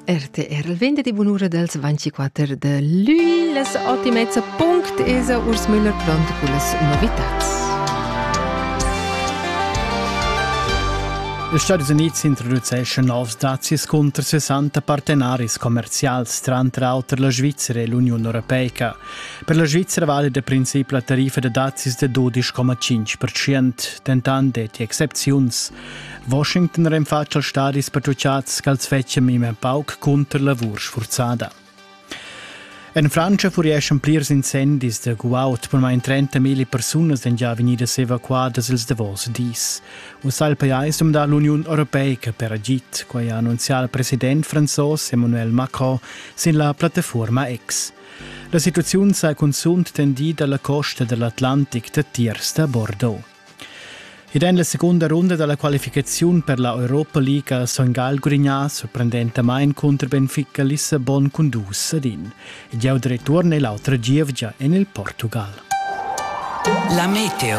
RTR il vende di bunura dals 24 de lui las ottimezza punct esa Urs Müller pronto con las novitats. Los Stati Uniti introduceschon novs dazis contro 60 partenaris commercials, tranter auter la Svizzera e l'Unione Europeica. Per la Svizzera vale da princip la tariffa da dazis de 12,5%, dentant detti excepziuns. Washington renfatsch als stadis pertuchads ch'als fetschia memia pauc cunter lavur sfurzada. En Frantscha furieschan plirs incendis da guaud per mai 30.000 persunas èn già vegnidas evacuadas ils davos dis. Uss ha il pajais dumdà l'Uniun Europeica per agid, quai ha annunzià il president franzos Emmanuel Macron sin la plattafuorma X. La situaziun sa cunzunt tendida alla costa dell'Atlantic da tiers da Bordeaux. Ed en la segunda runda dalla qualificaziun per la Europa League ha Son Gagl gurignà sorprendentamain cunter Benfica Lissabon cun dus ad in. Ed jau return e l'autra gievgia en il Portugal. La meteo.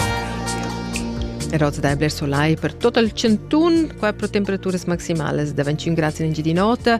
Rosa Daibler Solai per tot il 101, qua pro temperaturas maximales da 25 gradi in Gidinota,